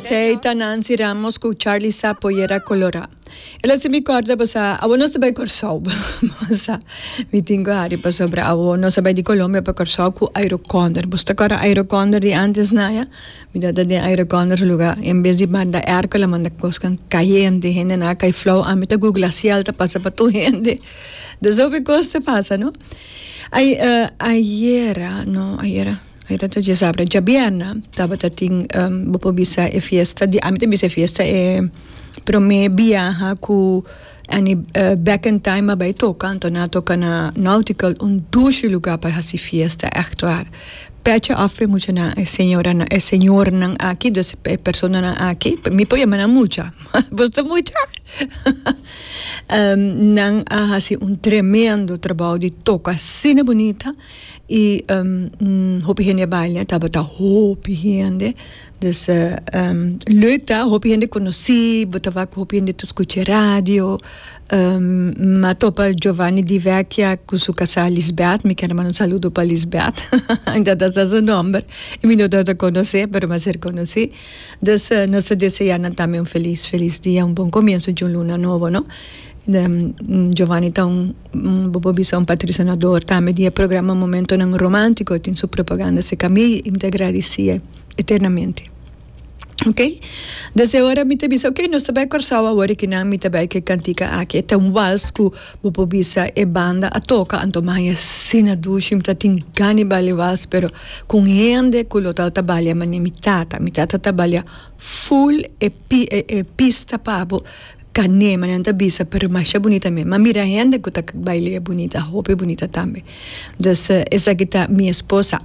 Esey ta Nancy Ramos cu Charly Sa Pollera Colora. El a haci mi corda basa, awo nos ta bay Corsou. basa, mi tin cu Harry pa sobra awo nos a bay di Colombia pa Corsou cu Aeroconder. Bus ta cora Aeroconder di antes na ya? Mi ta ta den Aeroconder su lugar. En bes di manda airco el a manda cosnan cayente. Hendenan a cay flow. Ami ta googla ciel ta pasa pa tur hende. Desof e cos ta pasa no. Ay eh, ayera, no ayera, ayera ta djezabra, djabierna tabata tin, em, bo por bisa e fiesta di, ami ta bisa e fiesta e prome biaha cu Annie eh Back in Time a bay toca, anto nan a toca na Nautical, un dushi lugar pa haci fiesta, echt waar. Pecha af e muchanan, e señoranan, e señornan aki, dus e personanan aki, mi por yama nan mucha, boso ta mucha? Nan a hasi un tremendo trabou di toka asina bunita i hopi hende a baila e tabata hopi hende dus leuk ta hopi hende konosí bo ta wak ku hopi hende ta skucha radio mi a topa Giovanni di Vecchia ku su kasá Lisbeth mi kier a manda un saludo pa Lisbeth mi ta tasa su nòmber i mi no tabata konos'é pero mi a ser konosí. Dus nos ta deseá nan tambe un felis felis dia, un bon komienso di un luna nobo, no. Giovanni ta un, bo por bisa un patrisionador tambe di e programa Momentonan Romántiko, e tin su propaganda serka mi i mi ta gradisié eternamente. Ok, desde ora mi ta bisa, ok, nos ta bai Kòrsou awor e kinan mi ta bai ku e kantika aki. E ta un wals ku. Bo por bisa e banda a toka anto maña sina dushi mi ta tin gani balia wals pero ku un hende ku lo tabata balia manera mi tata mi tata ta balia full e e pista pa bo kane manera nan ta bisa pero masha bunita mi a mira hende ku ta bail'e bunita hopi bunita tambe entonces esaki ta mi esposa.